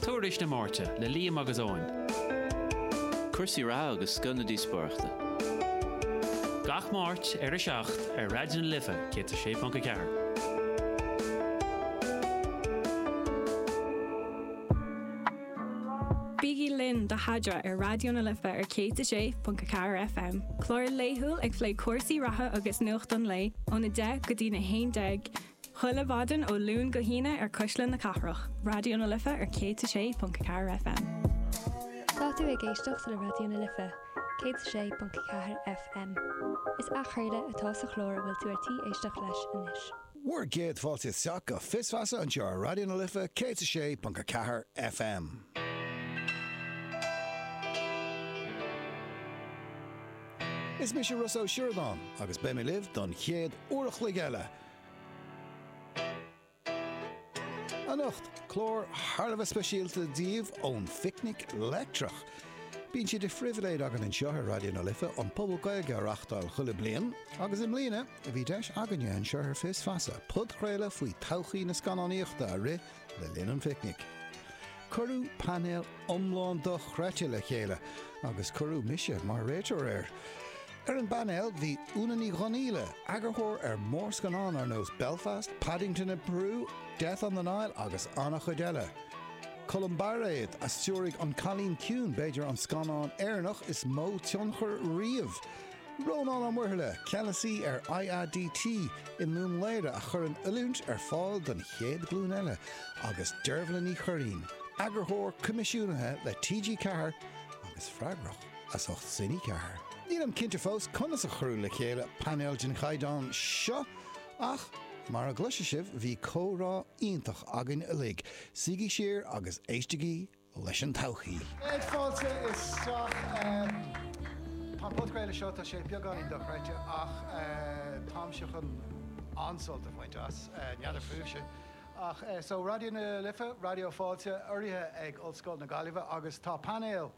Tuairisc na Máirte le Liam agus Eoin. Cúrsaí reatha agus scoth na díospóireachta. Gach Máirt ar a 7 ar Raidió na Life 106.4. Bígí linn do Thaidhre ar Raidió na Life ar 106.4 FM, clár laethúil ag plé cúrsaí reatha agus nuacht an lae óna 10 go dtí na 11 Chuile mhaidin ó Luan go hAoine ar Cuisle na Cathrach, Raidió na Life ar 106.4 FM. Tá tú ag éisteacht le Raidió na Life, 106.4 FM. Is athchraoladh atá sa chlár a bhfuil tú ar tí éisteacht leis anois. Bhur gcéad fáilte isteach go Fios Feasa anseo ar Raidió na Life 106.4 FM. Is mise Rossa Ó Sioradáin agus beidh mé libh don chéad uair a chloig eile, Anocht, clár thar a bheith speisialta daoibh ón Phicnic Leictreach. Bíonn sé de phribhléid againn anseo ar Raidió na Life an Puball Gaeilge a reáchtáil chuile bliain agus i mbliana bhí deis againne anseo ar Fios Feasa podchraoladh faoi todhchaí na scannánaíochta a rith Le linn an phicnic, cuireadh painéal iomlán dochreidte le chéile agus cuireadh mise mar réiteoir air. Ar an bpainéal bhí Úna Ní Dhonghaíle, eagarthóir ar mhórscannán ar nós Belfast, Paddington in Peru, Death on the Nile agus an-chuid eile. Colm Bairéad a stiúraigh An Cailín Ciúin, b'fhéidir an scannán Éireannach is mó tionchar riamh Rónán Ó Muirthile, Ceannasaí ar IADT i nDún Laoghaire a chuireann oiliúint ar fáil don chéad ghlúin eile agus Deirbhile Ní Churraighín, Eagarthóir Coimisiúnaithe le TG4 agus freagrach as ucht Cine 4. Nílim cinnte fós conas a cuireadh le chéile painéal den chaighdeán seo ach mar a gcloisfidh sibh bhí comhrá iontach againn uilig, suígí siar agus éistigí! leis an todhchaí. Céad fáilte isteach. Tá an podchraoladh seo, tá sé beagáinín dochreidte ach táimse chun an-sult a bhaint as, n'fheadar fúibhse. Ach so, Raidió na Life, Raidió Fáilte, urraithe ag Ollscoil na Gaillimhe agus tá painéal,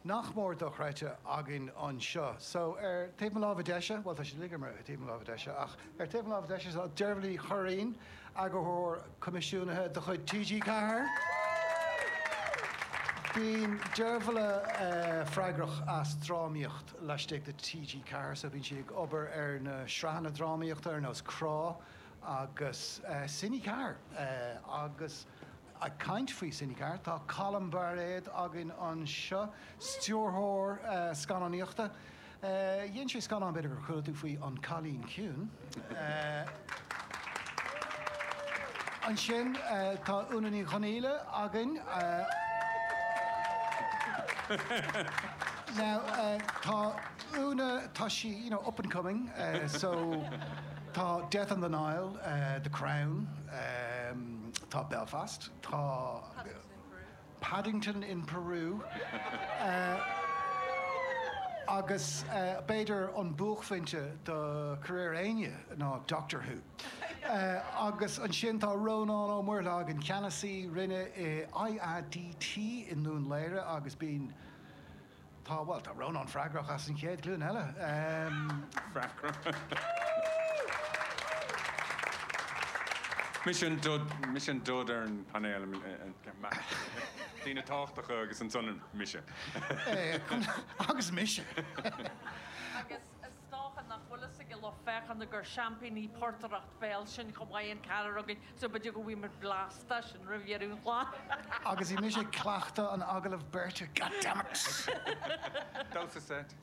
nach mór dochreidte againn anseo. So, ar taobh mo láimhe deise, bhuel, tá siad uilig ar taobh mo láimhe deise, ach ar taobh mo láimhe deise, tá Deirbhile Ní Churraighín, eagarthóir coimisiúnaithe de chuid TG4. Bíonn Deirbhile freagrach as drámaíocht laistigh de TG4, so bíonn sí ag obair ar na sraitheanna drámaíochta ar nós Crá agus Cine 4 agus. Ag caint faoi sin, ceart, tá Colm Bairéad againn anseo, stiúrthóir scannánaíochta. Dhein sé scannán, b'fhéidir gur chuala tú faoi, An Cailín Ciúin. Ansin tá Úna Ní Dhonghaíle againn. Now tá Úna, tá sí, you know, up and coming, so tá Death on the Nile, The Crown, Tá Belfast, tá Paddington in Peru agus b'fhéidir an buaicphointe do career éinne ná Doctor Who. Agus ansin tá Rónán Ó Muirthile againn, ceannasaí roinne IADT i nDún Laoghaire agus bíonn Tá, bhuel, tá Rónán freagrach as an chéad ghlúin eile. Freagrach. Mise an dud ar an painéal. Daoine tábhachtacha agus ansan mise. Agus mise. Agus Is dócha nach bhfuil fhios ag an lucht féachana gur seaimpíní portaireacht bhéil sinn chomh maith, an ceathrar againn, so b'fhéidir go bhfaighimid blast de sin roimh dheireadh an chláir! Agus í anois ag cleachtadh an agallaimh beirte, goddammit! Damhsa seit.